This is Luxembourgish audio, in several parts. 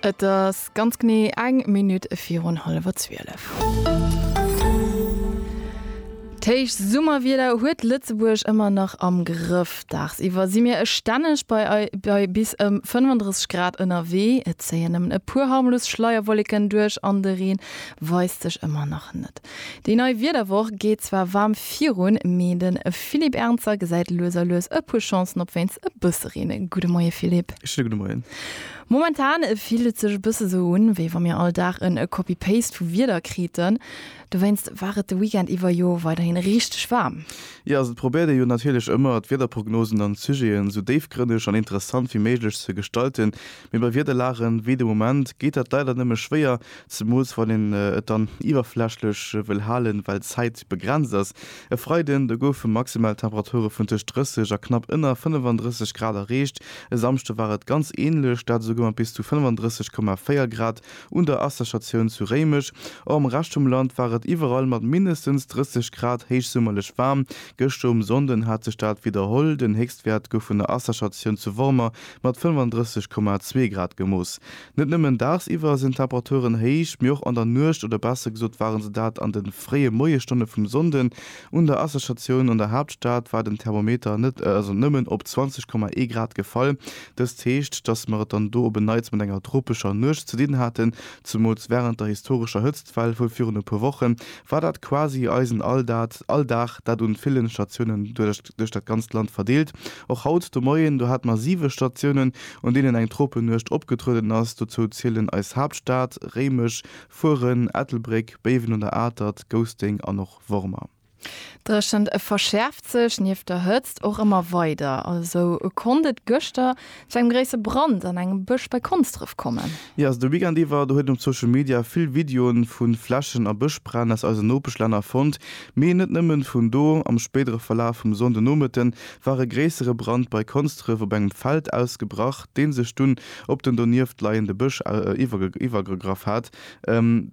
Et ass ganz genee eng Minutt virun hallwer zwielef. D'héicht Summerwieder huet Lëtzebuerg ëmmer nach am Grëff. Dagsiwwer si mir stänneg bei bis ëm 35 Grad ënnerwee. Et zéien nëmmen e puer harmlos Schleierwollécken duerch an de Reen weist sech ëmmer nach net. Déi nei Wiederwoch geet zwar waarm virun, mee de Philippe Ernzer gesäit lues a lues e puer Chancen op wéinst e bësse Reen. Gudde Moie Philippe. Schéine gudde Moien. Momentan fillt et sech e bësse esou un, wéi wa mir all Dag en Copy-Paste vu Wieder kriten. Dowéinst war et de Weekend iwwer jo weiderhin richteg waarm. Jo, also et probéiert ee jo natierlech ëmmer d'Wiederprognosen an d'Sujeten esou déifgrënneg an interessant wéi méiglech ze gestalten, mee bei Wiederlagen wéi de Moment geet dat leider nëmme schwéier, Zemools wann een et dann iwwerflächlech wëll halen, well d'Zäit begrenzt ass. E Freiden, do goufe maximal Temperature vun tëscht 30 a knapp ënner 35 Grad erreecht. E Samschde war et ganz änlech, dat esouguer mat bis zu 35,4 Grad un der Asserstatioun zu Réimech. Och am Rescht vum Land war et iwwerall mat mindestens 30 Grad héichsummerlech waarm. Gëschter um Sonnden hat sech dat widderholl, den Héchstwäert gouf vun der Asserstatioun zu Wormer mat 35,2 Grad gemooss. Net nëmmen daagsiwwer sinn d'Temperaturen héich, mee och an der Nuecht, oder besser gesot waren se dat an den fréie Moiesstonne vum Sonnden. Un der Asserstatioun an der Haaptstad war den Thermometer net also nëmmen op 20,1 Grad gefall. Dëst heescht, dass mer et dann do op en Neits mat enger tropescher Nuecht ze dinn haten. Zumools während der historescher Hëtztwell vu virun e puer Wochen war dat quasi eisen Alldaat Alldag, dat un villen Statiounen duerch duerch dat ganzt Land verdeelt. Och haut de Moien, do hate mer siwe Statiounen, un deenen eng Tropenuecht opgetrueden ass. Dozou zielen eis Haaptstad, Réimech, Furen, Ettelbréck, Béiwen un der Atert, Gousténg an och Wormer. D'Dréchent verschäerft sech nieft der Hëtzt och ëmmer weider. Esou konnt et gëschter Zu engem gréisse Brand an engem Bësch bei Konsdref kommen. Jo, also de Weekend iwwer, do huet een op Social Media vill Videoen vu Flächen a Bëschbränn aus eisen Nopeschlänner fonnt. Mee net nëmmen vun do. Am spéidere Verlaf vum Sonnde Nomëtten war e gréissere Brand bei Konsdref op engem Feld ausgebrach, deen sech dunn op den donieft leiende Bësch iwwergegraff hat.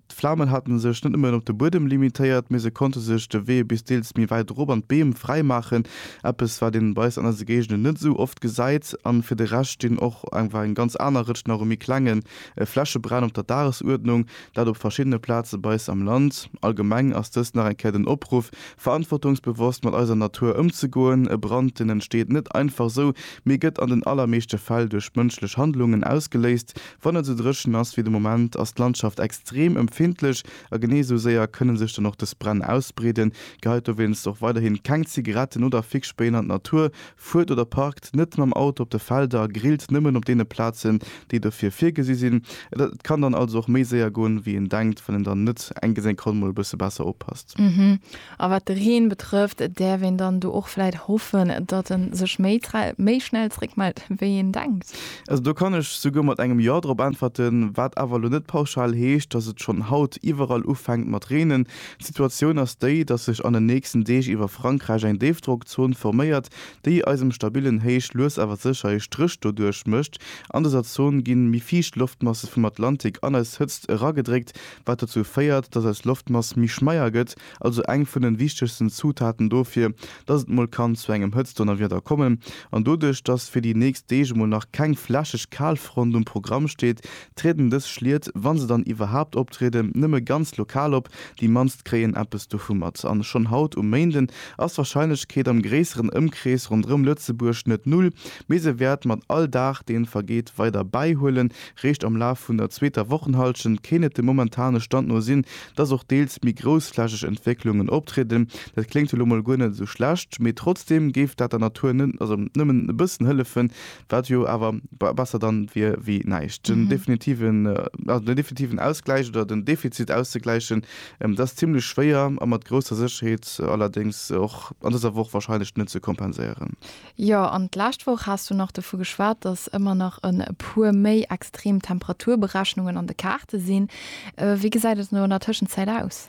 D'Flamen haten sech net nëmmen op de Buedem limitéiert, mee se konnte sech de Wee bis deels méi wäit erop an d'Beem fräi maachen, eppes wat een bei eis an eise Géigenden net esou oft gesäit. An fir de Rescht stinn och einfach eng ganz aner Rëtsch nach u méi klengen Flächebränn op der Dagesuerdnung, dat op verschiddene Plaze bei eis am Land. Allgemeng ass dëst nach eng Kéier den Opruff, verantwortungsbewosst mat eiser Natur ëmzegoen. E Brand, deen entsteet net einfach esou, mee gëtt an den allermeeschte Fäll duerch mënschlech Handlungen ausgeléist, Wann et esou dréchen ass wéi de Moment, ass d'Landschaft extrem empfindlech a genee esou séier kënne sech dann och dës Bränn ausbreeden. Geheit dowéinst och weiderhin keng Zigaretten oder Fixspéien an d'Natur, fuert oder parkt net mam Auto op de Felder a grillt nëmmen op deene Plazen, déi dofir virgesi sinn. Et kann dann also och méi séier goen, wéi een denkt, wann een dann net enges eng Konn mol e bësse besser oppasst. A wat de Reen betrëfft, däerf een dann do och vläit hoffen, datt e sech méi méi schnell zréckmellt, wéi een denkt? Also do kann ech souguer mat engem Jo drop äntwerten, wat awer elo net pauschal heescht, datt et schonn haut iwwerall ufänkt mat reenen. D'Situatioun ass déi, datt sech an den nächsten Deeg iwwer Frankräich eng Déifdrockzon forméiert, déi eisem stabillen Héich lues awer sécher ee Stréch doduerch mécht. An dëser Zon gi méi fiicht Loftmasse vum Atlantik an eis Hëtzt eragedréckt, wat dozou féiert, dass eis Loftmass méi schmeier gëtt, also eng vun den wichtegsten Zutaten dofir, dass et mol kann zu engem Hëtztdonnerwieder kommen. An doduerch, dass fir déi nächst Deeg emol nach keng flächeg Kalfront um Programm steet, trieden dës Schliet, wa se dann iwwerhaapt optrieden, nëmme ganz lokal op, déi mannst kréien eppes dovu mat. A schonn haut um Méinden ass d'Warscheinlechkeet am gréisseren Ëmkrees ronderëm Lëtzebuerg net null, mee se wäert mat all Dag, dee vergeet, weider bäihuelen, Réischt am Laf vun der zweeter Wochenhallschent kéint et dem momentane Stand no sinn, dass och deels méi groussflächeg Entwécklungen optrieden. Dat kléngt jo lo mol guer net esou schlecht, mee trotzdeem géif dat der Natur net, also nëmmen e bëssen hëllefen, wat jo awer besser dann wier wéi näischt. Den definitiven, also den definitiven Ausgläich oder den Defizit auszegläichen, dat ass zimmlech schwéier a mat grousser Sécherheet allerdéngs och an dëser Woch warscheinlech net ze kompenséieren. Jo, an d'lescht Woch has du nach dovu geschwat, dass ëmmer nach e puer méi extrem Temperaturberechnungen an de Kaarte sinn. Wéi gesäit et elo an der Tëschenzäit aus?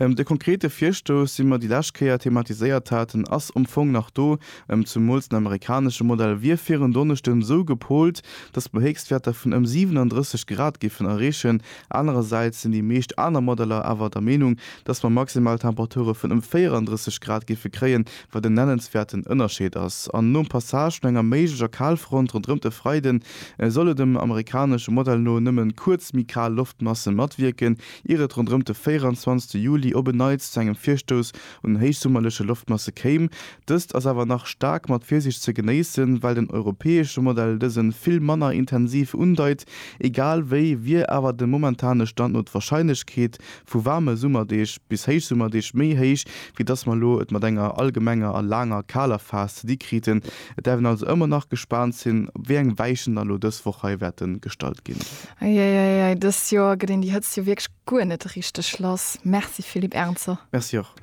De konkrete Virstouss, dee mer déi lescht Kéier thematiséiert haten, ass am Fong nach do. Zemools den amerikanesche Modell wier fir en Donneschden esou gepolt, dass mer Héchstwäerter vun ëm 37 Grad géifen erreechen. Anerersäits sinn déi meescht aner Modeller awer der Meenung, dass mer maximal Temperature vun ëm 34 Grad géife kréien, wat en nennenswäerten Ënnerscheed ass, an nom Passage vun enger méiglecher Kalfront ronderëm de Freiden, solle dem amerikanesche Modell no nëmme kuerz méi kal Loftmasse matwierken, ier et ronderëm de 24 Juli op en Neits zu engem Virstouss un héichsummerleche Loftmasse kéim. Dëst ass awer nach staark mat Virsiicht ze genéissen, well den europäesche Modell dëse vill manner intensiv undeit. Egal wéi wier awer de momentane Stand no d'Warscheinlechkeet, vu waarme Summerdeeg bis Héichsummerdeeg méi héich, wéi dass mer elo et mat enger allgemenger a laanger kaler Phas ze di kriten. Et däerf een also ëmmer nach gespaant sinn, op wéi eng Weichen dann elo dës Woch hei wäerte gestalt ginn. Eieieiei, dëst Joer gëtt een déi Hëtzt jo wierklech guer net richteg lass. Merci Philippe Ernzer. Merci och.